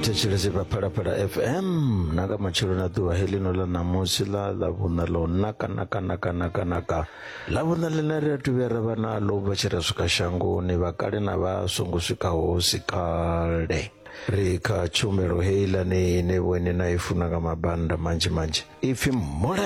thetshelese vha phalaphala fm na nga matshelo na ḓuvha heḽino ḽa ṋamusi ḽa ḽa vhuṋa ḽo naka naka naka naka naka ḽa vhuṋa ḽine ri a tuvhuya ra vha naḽo vha tshi ra swika shangoni vha kale na vha songo swikaho si kale ri kha tshumelo heiḽani ine vhoine na i funa nga mabanda manzhi manzhi ipfhi mulaedza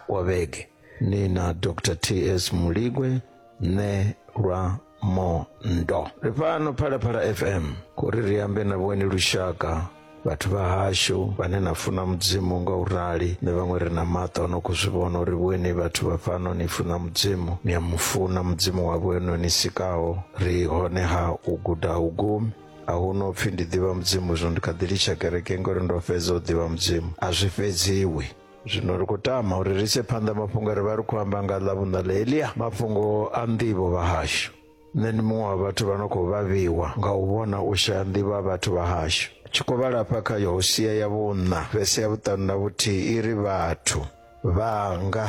wa vhege ni na dr ts muligwe ne lwa mondo ri fhano phalaphala fm kuri ri ambe na vhweni lushaka vhathu vha hashu vhane na funa mudzimu nga u rali ni vhaṅwe ri na maṱo ano khou zwi vhona uri vhweni vhathu vha fhano ni funa mudzimu ni a mu funa mudzimu wa vhwenu ni sikaho ri hone ha u guda ha u gumi a hu no pfi ndi ḓivha mudzimu zwino ndi kha ḓi litsha kereke ngori ndo fhedza u ḓivha mudzimu a zwi fhedziwi zwino ri khou tama uri ri ise phanḓa mafhungo a ri vha ri khou amba nga ḽa vhuṋa ḽa elia mafhungo a nḓivho vhahashu nṋe ndi muṅwe wa vhathu vha no khou vhavhiwa nga u vhona u shaya nḓivho ha vhathu vhahashu tshi khou vhala hafha kha yohosia ya vhuṋa vhese ya vhuṱanu na vhuthihi i ri vhathu vhanga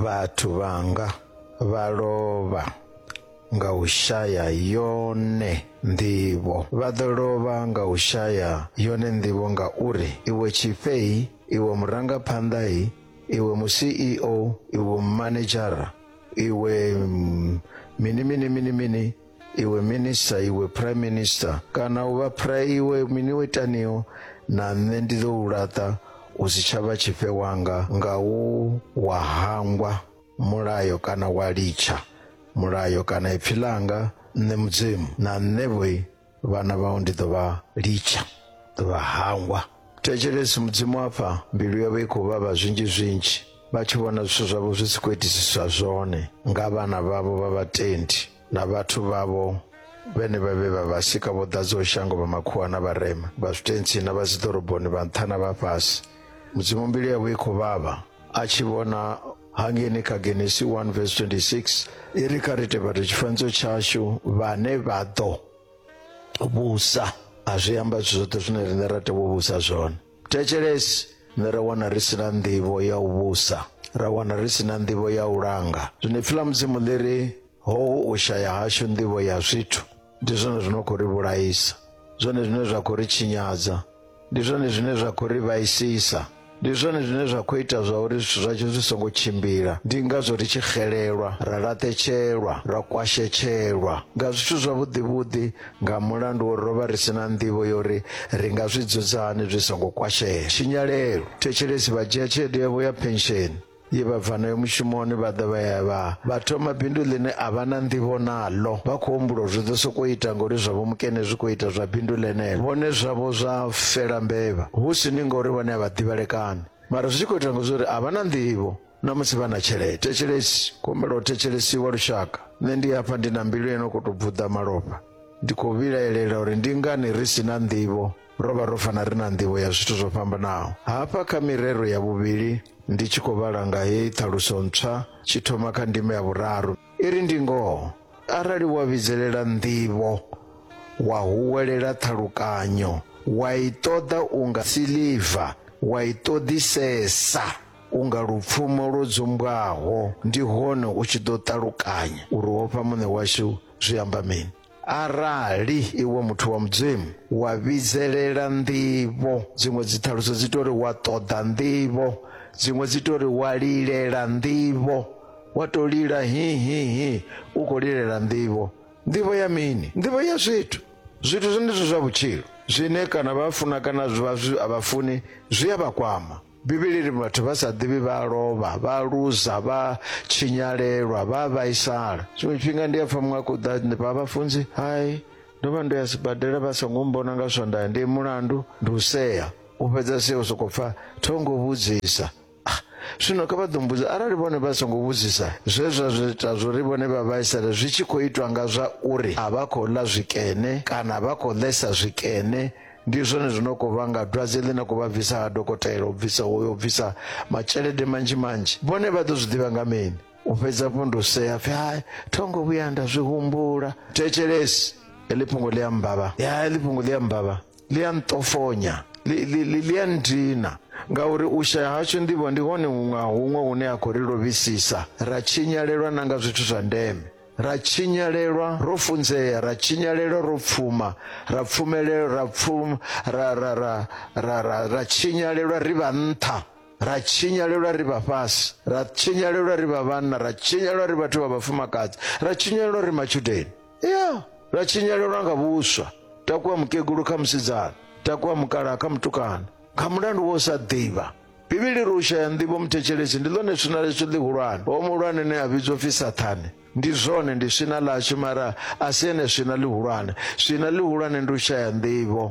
vhathu vhanga vha lovha nga u shaya yone nḓivho vha ḓo lovha nga u shaya yone nḓivho ngauri iwe tshifhei iwe murangaphanḓai iwe mu ceo iwe mumanedzhara iwe mm, mini mini mini mini iwe minista iwe prime minister kana u vha pra iwe mini wo itaniho na nṋe ndi ḓo u laṱa u si tsha vha tshifhe wanga nga u wa hangwa mulayo kana wa litsha mulayo kana ipfi ḽanga nṋe mudzimu na nṋe vhoi vhana vhau ndi ḓo vha litsha ḓo vha hangwa thetshelesi mudzimu afha mbilu yavho i khou vhavha zwinzhi zwinzhi vha tshi vhona zwithu zwavho zwi si khou itisiswa zwone nga vhana vhavho vha vhatendi na vhathu vhavho vhene vha vhe vha vhasika vho ḓadzaho shango vha makhuwa na vharema vha zwitentsi na vha dziḓoroboni vha nṱha na vha fhasi mudzimu mbilu yavho i khou vhavha a tshi vhona hangeni kha genesi 1 vs 26 i ri kha ri tevhate tshifanyiso tshashu vhane vha ḓo vhusa a zwi amba zwithu zwoṱhe zwine riṋe ra tea u vhusa zwone Thetshelesi, nṋe ra wana ri si na nḓivho ya u vhusa, ra wana ri si na nḓivho ya u langa. Zwino ipfi ḽa Mudzimu ḽi ri, Hohu u shaya hashu nḓivho ya zwithu ndi zwone zwi no khou ri vhulaisa, zwone zwine zwa khou ri tshinyadza, ndi zwone zwine zwa khou ri vhaisisa, ndi zwone zwine zwa khou ita zwa uri zwithu zwashu zwi songo tshimbila. Ndi ngazwo ri tshi xelelwa, ra laṱetshelwa, ra kwashetshelwa nga zwithu zwavhuḓi-vhuḓi nga mulandu wo rovha ri si na nḓivho yo ri ri nga zwi dzudza hani zwi songo kwashea tshinyalelo thetshelesi vha dzhia tshelede yavho ya pensheni ye vha bva nayo mushumoni vha ḓa vha ya vha vha thoma bindu ḽine a vha na nḓivho naḽo vha khou humbula zwi ḓo sokou ita ngori zwavho mukene zwi khou ita zwa bindu ḽeneḽo vhone zwavho zwa fela mbevha hu si ni ngori vhone a vha ḓivhalekani mara zwi tshi khou ita ngo zwo uri a vha na nḓivho na musi vha na tshelede thetshelesi kumbela u thetshelesiwa lushaka nṋe ndi hafha ndi na mbilu ino khou tou bvuḓa malofha ndi khou vhilaelela uri ndi ngani ri si na nḓivho ro vha ro fana ri na nḓivho ya zwithu zwo fhambanaho hafha kha mirero ya vhuvhili ndi tshi khou vhala nga heyi ṱhaluso ntswa tshi thoma kha ndima ya vhuraru i ri ndi ngoho arali wa vhidzelela nḓivho wa huwelela ṱhalukanyo wa i ṱoḓa unga siliva wa i ṱoḓisesa Unga lupfumo lwo dzumbwaho, ndi hone u tshi ḓo ṱalukanya uri wo fha Muṋe washu zwi amba mini. Arali iwe muthu wa Mudzimu wa vhidzelela nḓivho, dziṅwe dziṱhaluso dzi tou ri wa ṱoḓa nḓivho, dziṅwe dzi tou ri wa lilela nḓivho, wa tou lila hi hi hi u khou lilela nḓivho. Nḓivho ya mini? Nḓivho ya zwithu, zwithu zwenezwo zwa vhutshilo zwine kana vha funa kana vha zwi a vha funi zwi a vha kwama. bivhili ri vhathu vha sa ḓivhi vha a lovha vha a luza vha tshinyalelwa vha a vhaisala tshiṅwe tshifhinga ndi a pfha muṅwe a khou ḓa ndi vha vhafunzi hai ndo vha ndo ya sibadela vha songo mbona nga swandaya ndi mulandu ndi u sea u fhedza sea u sokou pfha thongo vhudzisa Ah, zwino kha vha ḓo mbudza arali vhone vha songo vhudzisa zwe zwa zwi ita zwori vhone vha vhaisale zwi tshi khou itwa nga zwa uri a vha khou ḽa zwikene kana vha khou ḽesa zwikene ndi zwone zwi no khou vhanga dwadze ḽi na khou vha bvisa ha dokotela u bvisa hoyo u bvisa matshelede manzhi manzhi vhone vha ḓo zwi ḓivha nga mini u fhedza fho ndo sea pfi hai thongo vhuya nda zwi humbula thetshelesi heḽi fhungo ḽi a mbavha ya heḽi fhungo ḽi a mbavha ḽi a nṱofonya ḽi- ḽi ḽi- ḽi a ndina ngauri u shaya hashu ndivho ndi hone huṅwe ha huṅwe hune ha khou ri lovhisisa ra tshinyalelwa na nga zwithu zwa ndeme Ra tshinyalelwa ro funzea, ra tshinyalelwa ro pfuma, ra pfumelelwa ra pfum ra ra ra ra ra ra tshinyalelwa ri vha nṱha, ra tshinyalelwa ri vha fhasi, ra tshinyalelwa ri vha vhanna, ra tshinyalelwa ri vhathu vha vhafumakadzi, ra tshinyalelwa ri matshudeni. Ya, ra tshinyalelwa nga vhuswa. Takuwa mukegulu kha musidzana, takuwa mukalaha kha mutukana, nga mulandu wa u sa ḓivha. Bivhili ri u shaya nḓivho muthetshelesi ndi ḽone swina ḽashu ḽihulwane. Hoyo muhulwane ane a vhidzwa upfi Saṱhane. Ndi zwone, ndi swina ḽashu, mara a si ene swina ḽihulwane. Swina ḽihulwane ndi u shaya nḓivho.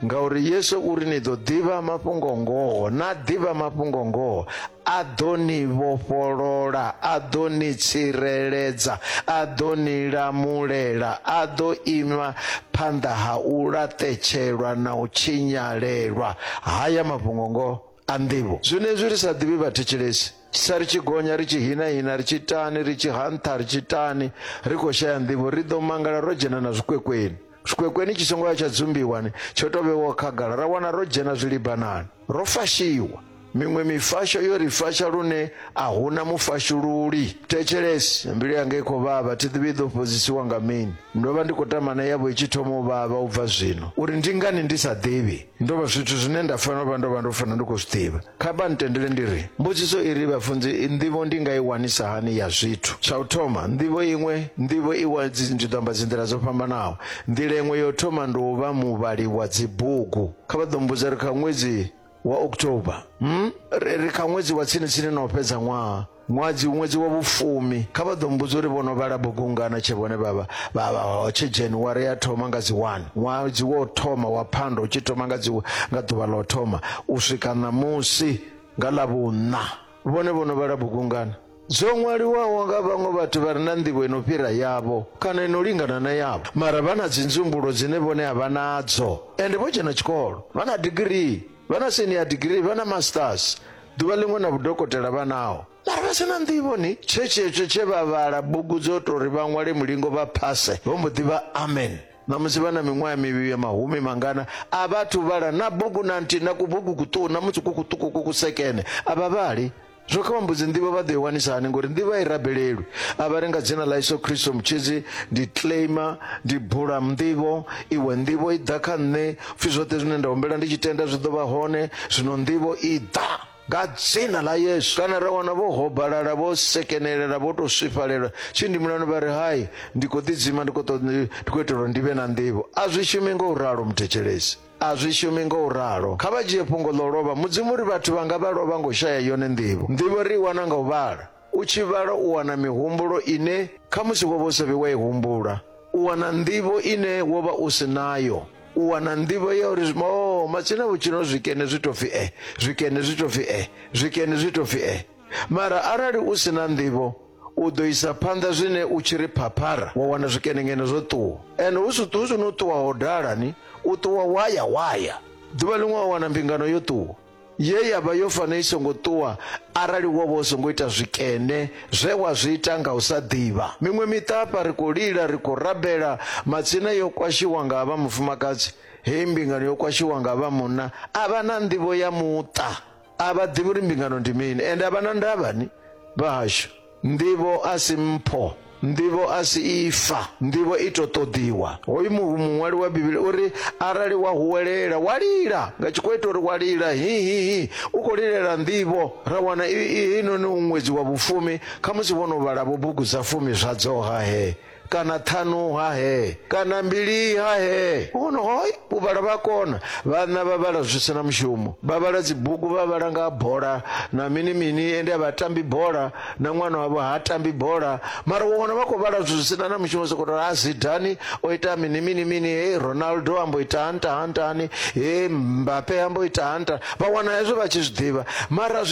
Ngauri Yesu u ri ni ḓo ḓivha mafhungo ngoho, na ḓivha mafhungo ngoho, a ḓo ni vhofholola, a ḓo ni tsireledza, a ḓo ni lamulela, a ḓo ima phanḓa ha u laṱetshelwa na u tshinyalelwa. Haya mafhungo ngoho a nḓivho. Zwenezwi ri sa ḓivhi vhathetshelesi, sa ri tshi gonya, ri tshi hina-hina, ri tshi itani, ri tshi ha nṱha, ri tshi itani, ri khou shaya nḓivho, ri ḓo mangala ro dzhena na zwikwekweni. Zwikwekweni tshi songo ya tsha dzumbiwa ni, tsho tou vhewaho khagala, ra wana ro dzhena zwilibanani. Ro fashiwa. Miṅwe mifasho yo ri fasha lune a hu na mufashululi. Thetshelesi, mbilu yanga i khou vhavha, thi ḓivhi i ḓo fhodzisiwa nga mini. Ndo vha ndi khou tama na yavho i tshi thoma u vhavha u bva zwino, uri ndi ngani ndi sa ḓivhi. Ndo vha zwithu zwine nda fanela u vha ndo vha ndo fanela ndi khou zwi ḓivha. Kha vha ntendele ndi ri, mbudziso i ri, Vhafunzi, nḓivho ndi nga i wanisa hani ya zwithu? Tsha u thoma, nḓivho iṅwe, nḓivho i wa, ndi ḓo amba dzinḓila dzo fhambanaho. Nḓila iṅwe ya u thoma ndi u vha muvhali wa dzibugu. Kha vha ḓo mbudza ri kha ṅwedzi wa October, hmm, ri kha ṅwedzi wa tsini tsini na u fhedza ṅwaha, Ṅwedzi ṅwedzi wa vhufumi kha vha ḓo mmbudza uri vho no vhala bugu ngana tshe vhone vha vha vha vha hotshe January ya thoma nga dzi 1 ṅwedzi wo thoma wa phando u tshi thoma nga dzi nga ḓuvha ḽo thoma u swika ṋamusi nga ḽa vhunna vhone vho no vhala bugu ngana dzo ṅwaliwaho nga vhaṅwe vhathu vha re na nḓivho ino fhira yavho kana ino lingana na yavho mara vha na dzinzumbulo dzine vhone a vha nadzo ende vho dzhena tshikolo vha na digirii vha na senior degree vha na masters ḓuvha ḽiṅwe na vhudokotela vha naho mara vha sina nḓivho ni tshe tshetsho tshe vha vhala bugu dzo tou ri vha ṅwale mulingo vha phase vho mbo ḓi vha amen ṋamusi vha na miṅwaha mivhili ya mahumi mangana a vhathu vhala na bugu na nthihi na kubugu kuṱuku na musi ku kuṱuku ku kusekene a vha vhali Zwo kha vhambudzi nḓivho vha ḓo i wanisa hani ngori nḓivho a i rabelelwi a vha ri nga dzina ḽa Yesu Kristo mutshidzi ndi claimer ndi bula nḓivho iwe nḓivho i ḓa kha nṋe pfhi zwoṱhe zwine nda humbela ndi tshi tenda zwi ḓo vha hone zwino nḓivho i ḓa nga dzina ḽa yesu kana ra wana vho hobalala vho sekenelela vho tou swifhalela tshi ndi mulani vha ri hai ndi khou ḓidzima ndi khou itela uri ndi vhe na nḓivho a zwi shumi nga u ralo muthetshelesi A zwi shumi nga u ralo. Kha vha dzhie fhungo ḽa u lovha Mudzimu uri vhathu vhanga vha lovha nga u shaya yone nḓivho. Nḓivho ri i wana nga u vhala. U tshi vhala u wana mihumbulo ine khamusi wo vha u sa vhi wa i humbula. U wana nḓivho ine wo vha u si nayo. U wana nḓivho ya uri oo matsina vhutshilo zwikene zwi tou pfi e, zwikene zwi tou pfi e, zwikene zwi tou pfi e. Mara arali u si na nḓivho, U ḓo isa phanḓa zwine u tshi ri phaphara, wa wana zwikenenkene zwo ṱuwa. Ende hu si hu si no ṱuwa ho dala ni, u ṱuwa wa ya wa ya. Ḓuvha ḽiṅwe wa wana mbingano yo ṱuwa, ye ya vha yo fanela i songo ṱuwa arali wo vha u songo ita zwikene zwe wa zwi ita nga u sa ḓivha. Miṅwe miṱa hafha ri khou lila, ri khou rabela, matsina yo kwashiwa nga vha mufumakadzi, heyi mbingano yo kwashiwa nga vha munna. A vha na nḓivho ya muṱa. a vha ḓivhi uri mbingano ndi mini ende a vha na ndavha ni vhahashu nḓivho a si mpho nḓivho a si ifa nḓivho i to ṱoḓiwa hoyu muṅwali wa bivhili uri arali wa huwelela wa lila nga tshikho ita uri wa lila hihihi u khou lilela nḓivho ra wana inoni u ṅwedzi wa vhufumi khamusi vho no vhalavo bugu dza fumi zwa dzoha he kana ṱhanu ha he kana mbili ha he vhono hoi u vhala vha kona vhanna vha vhala zwi sina mushumo vha vhala dzibugu vha vhala nga bola na mini mini ende a vha tambi bola na ṅwana wavho ha tambi bola mara wo wana vha khou vhala zwi sina na mushumo soko tori a zidani o ita mini mini mini he ronaldo ambo ita hanta hantani he mbape ambo ita hanta vha wana hezwo vha tshi zwi ḓivha mara zwi